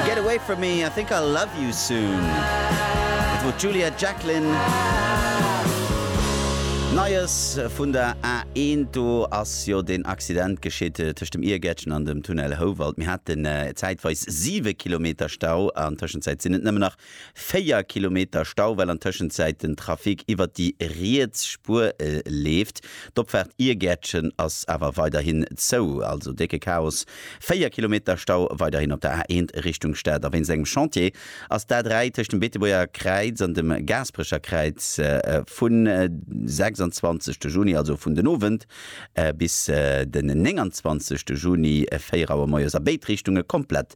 Get away from me, I think I'll love you soon. Dat wor d'Juliet Jacklin. Neies vun der A1, do ass jo deen Accident geschitt tëscht dem Iergäertchen an dem Tunnel Houwald. Mir haten zäitweis siwe Kilometer Stau, an Tëschenzäit sinn et nëmmen nach 4 Kilometer Stau, well an Tëschenzäit den Trafic iwwert déi riets Spuer leeft. D'Opfaart Iergäertchen ass awer weiderhin zou. Also décke Chaos, 4 Kilometer Stau weiderhin op der A1 Richtung Stad. A wéinst engem Chantier ass d'A3 tëscht dem Beetebuerger Kräiz an dem Gaasperecher Kräiz vun de 26 Juni, also vun den Owend, bis den 29 Juni 4 Auer moies a béid Richtunge komplett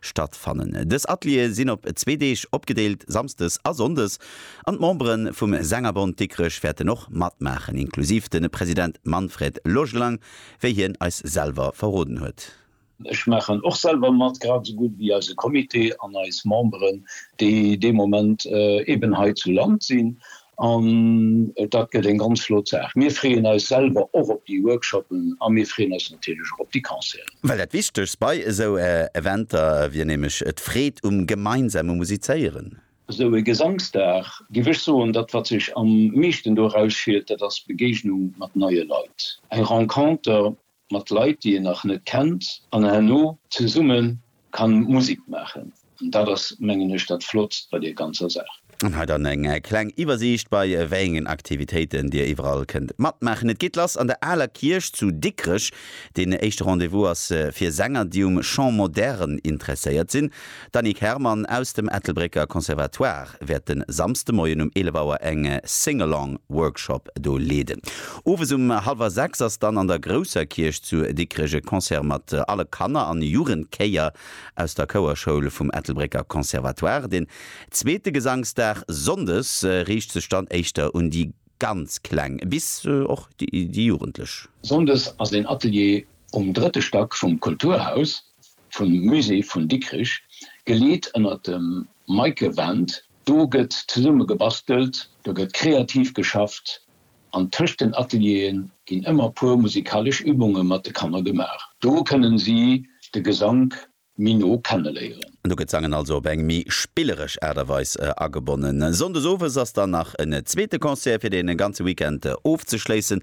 stattfannen. Dës Ateliere sinn op zwee Deeg opgedeelt, Samsdes a Sonndes, an d'Membere vum Sängerbond Dikrech wäerten och matmaachen, inklusiv de President Manfred Logelang, wéi hien eis selwer verroden huet. Ech maachen och selwer mat, grad esou gutt wéi eise Comité an eis Memberen, déi dee Moment eeben hei zu Land sinn. An dat gëtt eng ganz flott Saach. Mir freeën eis selwer och op déi Workshoppen a mir freeën eis natierlech och op déi Concerten. Well dat Wichtegst bei esou Eventer wier nämlech d'Freed um gemeinsame Musizéieren. Esou e Gesangsdag, géif ech soen, dat wat sech am meeschten do erausschillt, dat ass d'Begegnung mat neie Leit. Eng Renconter, Mat Leit déi een nach net kennt an herno zesumme kann Musik maachen. An dat ass mengen ech dat Flottst bei deer ganzer Saach. An hei dann eng kleng Iwwersiicht bei wéiengen Aktivitéiten dir iwwerall kënnt matmaachen. Et geet lass an der Aler Kierch zu Dikrech. Deen éischte Rendez-vous ass fir Sänger déi um Chant moderne interesséiert sinn. D'Annick Herrmann aus dem Ettelbrécker Conservatoire wäert de Samsdemoien um 11 Auer eng Sing-Along Workshop do leeden. Owes um hallwer 6 ass dann an der Grousser Kierch zu Dikrech e Concert mat alle Kanner an Jugendchéier aus der Chouerschoul vum Ettelbrécker Conservatoire. Den zweete Gesangsdag Sonndes riicht sech dann éischter un déi ganz Kleng bis och déi Jugendlech. Sonndes ass een Atelier um drëtte Stack vum Kulturhaus. vum Musée vun Dikrich, geleet ënnert dem Meike Wendt. Do gëtt zesumme gebastelt, do gëtt kreativ geschafft an tëscht den Ateliere ginn ëmmer puer musikalesch Übunge mat de Kanner gemaach. Do kënnen si de Gesank méi no kenneléieren. Do gëtt d'Sangen also op eng méi spilleresch Aart a Weis agebonnen. Sonndes owes ass dann nach en zweete Concert fir de ganze Weekend ofzeschléissen.